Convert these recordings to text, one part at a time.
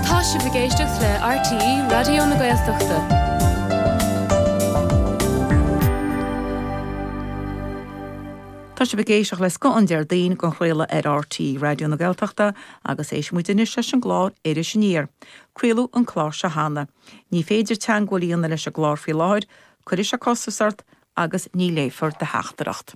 Tá sibh ag éisteacht le RTÉ Raidió na Gaeltachta. Tá sibh ag éisteacht le scoth an Déardaoin den chraoladh ar RTÉ Raidió na Gaeltachta agus éistfidh muid anois leis an gclár Iris Aniar. Craoladh an clár seo cheana. Ní féidir teagmháil a dhéanamh leis an gclár faoi láthair, cuirfidh sé costas ort agus ní léifear do theachtaireacht.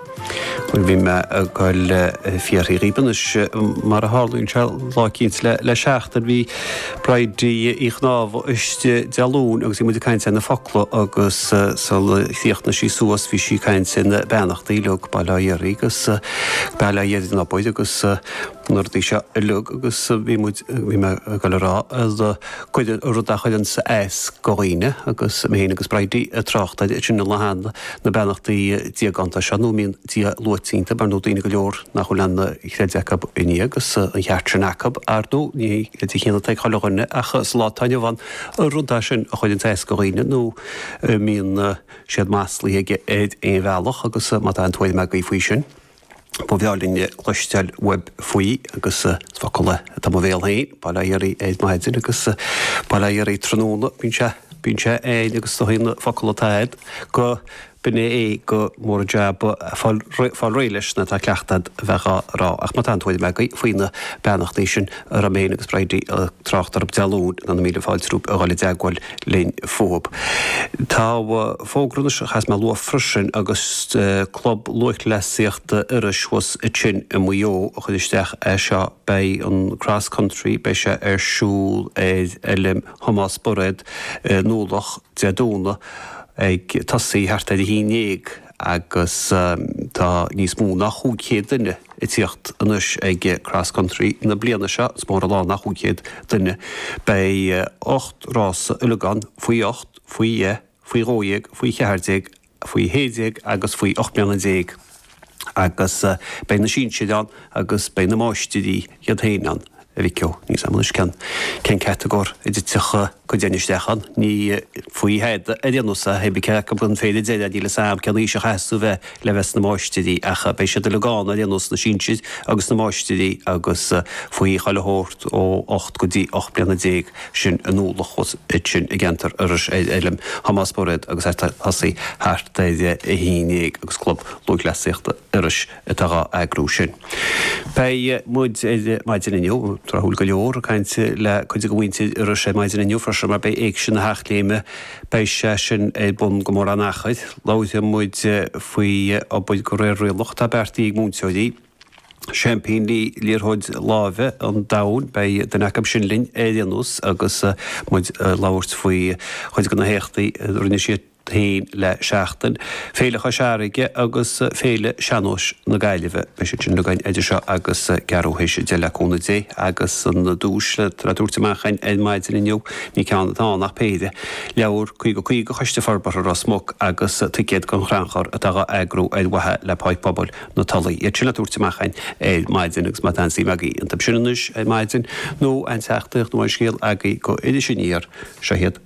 Bhuel, bhí mé ag dul ag fiafraí dhíbh, anois, mar a tharlaíonn sé, lá eicínt le seachtain. Bhí Bridie Uí Chonámha istigh Dé Luain agus bhí muid ag caint ar na focla agus sul a chríochnaigh sí suas bhí sí ag caint ar na beannachtaí uilig, bail ó Dhia oraibh agus bail ó Dhia ar an obair agus na rudaí seo uilig agus bhí muid, bhí mé ag dul a rá rud a chuireanns as do dhaoine agus mé fhéin agus Bridie ag trácht air, sin an lá cheana. na beannachtaí diaganta seo, nó a mbíonn Dia luaite iontu, mar ar ndóigh daoine go leor nach bhfuil aon chreideamh acu i nDia, agus an ceart sin acu, ar ndóigh, ní hé an creideamh céanna atá ag chuile dhuine, ach sa lá atá inniu ann, an rud é sin a chuireanns as do dhaoine, nó an mbíonn siad maslaithe aige ar aon bhealach, agus má tá aon tuairim agaibh faoi sin. Ba bhreá linn cloisteáil uaibh faoi agus focal atá i mo bhéal féin, bail ó Dhia oraibh ar maidin agus bail ó Dhia oraibh tráthnóna, bíonn sé, bíonn sé ann agus is dóigh aon fhocal atá a'd gurb in é é gur mór an jab fáil, fáil réidh leis nuair atá cleachtadh a'd a bheith á rá ach má tá aon tuairim agaibh faoi na beannachtaí sin a raibh mé fhéin agus Bridie a' trácht orthu Dé Luain, tá na mílte fáilte romhaibh a dhul i dteagmháil. linn fúthu. Tá fógra anois, a chaithfeas mé a lua freisin, agus Club Lúthchleasaíochta Iorrais thuas ansin i Maigh Eo a chuir isteach é seo, beidh an Cross Country, beidh sé ar siúl ar Fheilm Thomás Bairéad i nDúloch, Dé Domhnaigh, ag tosaí thart ar a haon déag. agus tá níos mó ná chúig chéad duine ag tíocht anois ag Cross Country na bliana seo, is mór an lá nach chúig chéad duine! Beidh ocht rása uilig ann, faoi ocht, faoi dheich, faoi dhó dhéag, faoi cheathair déag, faoi shé déag agus faoi ocht mbliana déag, agus beidh na sinsir ann agus beidh na máistirí iad féin ann. a mhic ó, níl 'fhios a'amsa cén catagóir a dtitfeadh muid féin isteach ann? Ní faoi thada ar aon nós a thaobhaigh ceann acu an féile deireadh, níl 'fhios a'am cén aois a chaithfeas tú bheith le bheith sna máistirí ach beidh siad uilig ann ar aon nós, na sinsir agus na máistirí agus faoi chuile shórt ó ocht go dtí ocht mbliana déag, sin i nDúloch, sin i gceantar Iorrais ar fheilm Thomás Bairéad agus ag tosaí thart ar a haon déag agus Club Lúthchleasaíochta Iorrais. atá dhá eagrú sin. Beidh muid ar maidin inniu, tráthúil go leor, ag caint le cuid de mhuintir Iorrais ar maidin inniu freisin mar beidh Éigse na hEachléime, beidh sé sin ar bun gan mórán achair. Labhróidh muid faoi obair go réir rialach atá beartaithe ag múinteoirí, seaimpíní liathróid láimhe an domhain, beidh duine acu sin linn ar aon nós agus muid ag labhairt faoi chuid de na héachtaí a rinne sé. héin le seachtain, Féile Chois Fharraige agus Féile Sean-Nóis na Gaillimhe. Beidh siad sin againn idir seo agus ceathrú th'éis a deich le cúnamh Dé agus an duais le tabhairt amach ar maidin inniu, ní ceann atá ann ach péire, leabhar 50 50 Choiste Forbartha Ros Muc agus ticéad don chrannchur atá dhá eagrú ar mhaithe le Páirc Pobail na Tulaí. Iad sin le tabhairt amach ar maidin agus má tá suim agaibh iontab sin anois ar maidin nó aon teachtaireacht nó aon scéal agaibh go Iris Aniar, seo hiad.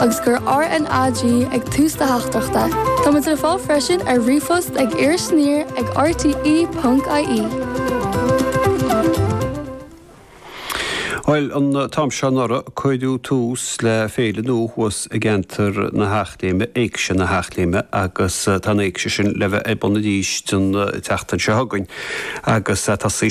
agus cuir RnaG ag tús na teachtaireachta. Tá muid le fáil freisin ar ríomhphost ag Iris Aniar ag rte ponc ie. Bhuel, an t-am seo anuraidh, cuireadh tús le féile nua thuas i gceantar na hEachléime, Éigse na hEachléime, agus tá an Éigse sin le bheith ar bun arís an tseachtain seo chugainn, agus tá sé.